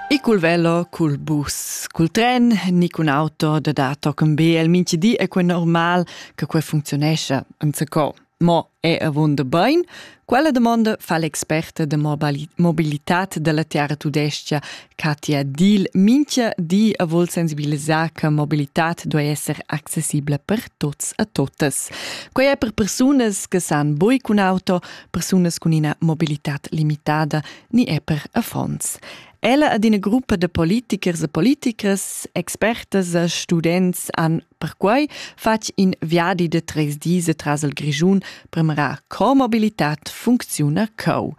E col velo, col bus, col tren, ni cun auto da da tochen be el minchi di è quel normal che quel funzionescha enzacò. Mo è avunda bain? Quella domanda fa l'experta de mobilitat della Terra Tudescia, Katja Diel, minchia di a vol sensibilisar che mobilitat doi esser accessibile per tots a totas. Quei è per persunas che san boi cun auto, persunas cun ina mobilitad limitada ni è per affons. Ella ad ina gruppa de politichers e politichers, expertas e students han perquai fatg in viadi de treis dis tras il Grischun per mirar co mobilitat funcziona cau.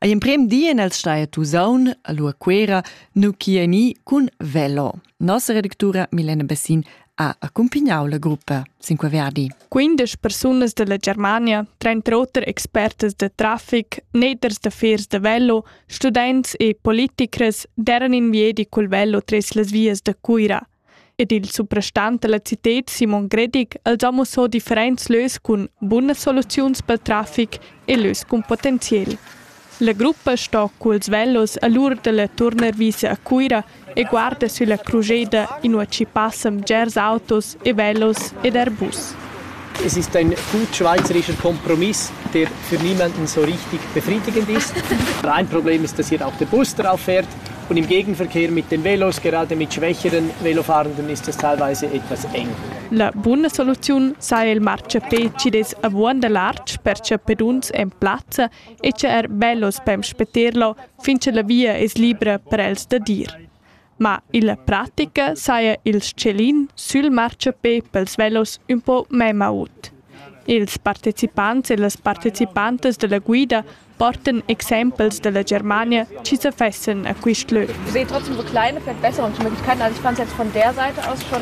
Ei emprem di en el stai a Tusaun, a Lua Quera, nu chi ni cun velo. Nossa redactura Milena Bessin ha accumpigniau la gruppa sin quei viadi. 15 persunas dalla Germania, trenta oter expertas da traffic, neters da fers da velo, students e politicras deran in viedi col velo tres las vias da Cuira. Ed il suprastant della citet Simon Gredig els ha mussò differents lös cun bunas soluziuns pel traffic e lös cun potenziel. La gruppa sto culs velos a l'ura dalla turnarvisa a Cuira e guarda sülla crujeda inua chi passan bgers autos e velos ed Airbus. Es ist ein gut schweizerischer Kompromiss, der für niemanden so richtig befriedigend ist. Ein Problem ist, dass hier auch der Bus drauf fährt und im Gegenverkehr mit den Velos, gerade mit schwächeren Velofahrenden, ist das teilweise etwas eng. La buna soluziun saja il marciapé chi'd es avuonda lartg per chapeduns en plazza e cha er bellos pem spetterlo fin cha la via es libra per els da dir. Ma illa pratica saja il s-chelin sül marciapé pels velos ün po memma ut. Ils partecipants e las partecipantas da la guida portan exempels da la Germania chi sa fessan a quist lö. Ich sehe trotzdem so kleine, vielleicht bessere Möglichkeiten. Also ich fand es jetzt von der Seite aus schon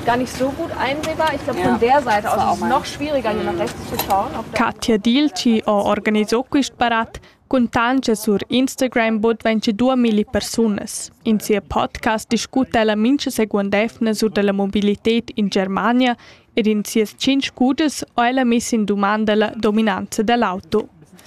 gar nicht so gut einsehbar. Ich glaube, ja. von der Seite aus ist es noch schwieriger, hier nach rechts Katja Dilci ho organisà quist barat cun tanscha sur Instagram bod 22 milli persunas. In sia podcast discuta ella mincha seguond evna sur da la mobilited in Germania ed in sias tschinch cudas ho ella miss in dumanda la dominanza da l'auto.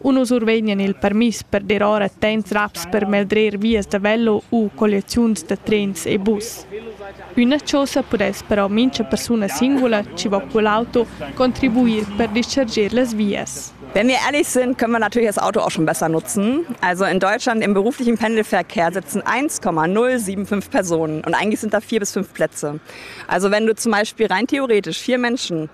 Uno survegnan il permiss per dir ora temps raps per meldrer vias da velo u colliaziuns da trens e bus. Üna chosa pudess però mincha persuna singula chi va cul auto contribuir per discharger las vias. Wenn wir ehrlich sind, können wir natürlich das Auto auch schon besser nutzen. Also in Deutschland im beruflichen Pendelverkehr sitzen 1,075 Personen und eigentlich sind da vier bis fünf Plätze. Also wenn du zum Beispiel rein theoretisch vier Menschen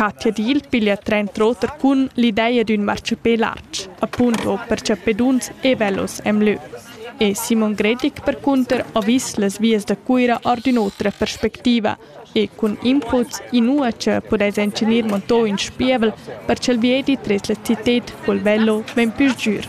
Katja Diel piglia trent'oter cun l'ideia d'ün marchapè lartg, appunto per chappeduns e velos e'm lö. E Simon Gredig percunter ha vis las vias da Cuira our d'ün'otra perspectiva e cun inputs inua cha pudais incenir montò ün spievel per cha'l viedi tres la cited col velo vegn pü sgür.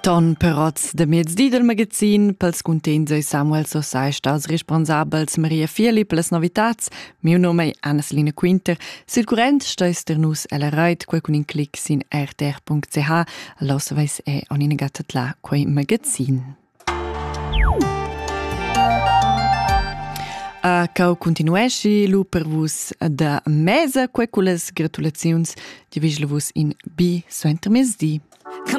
Ton perots de mezdi del magazin pels cuntegns ei Samuel Sosai stats responsabels Maria Philipp las novitats. Miu nome è Anneslina Quinter. Sil current steis ter nus ella reit quel cun in clic sin rtr.ch. Los veis e on in gatta la quei magazin. A cau continueschi lu per vus da mesa que cullas gratulaziuns, di vigel vus in bi suentermezdi.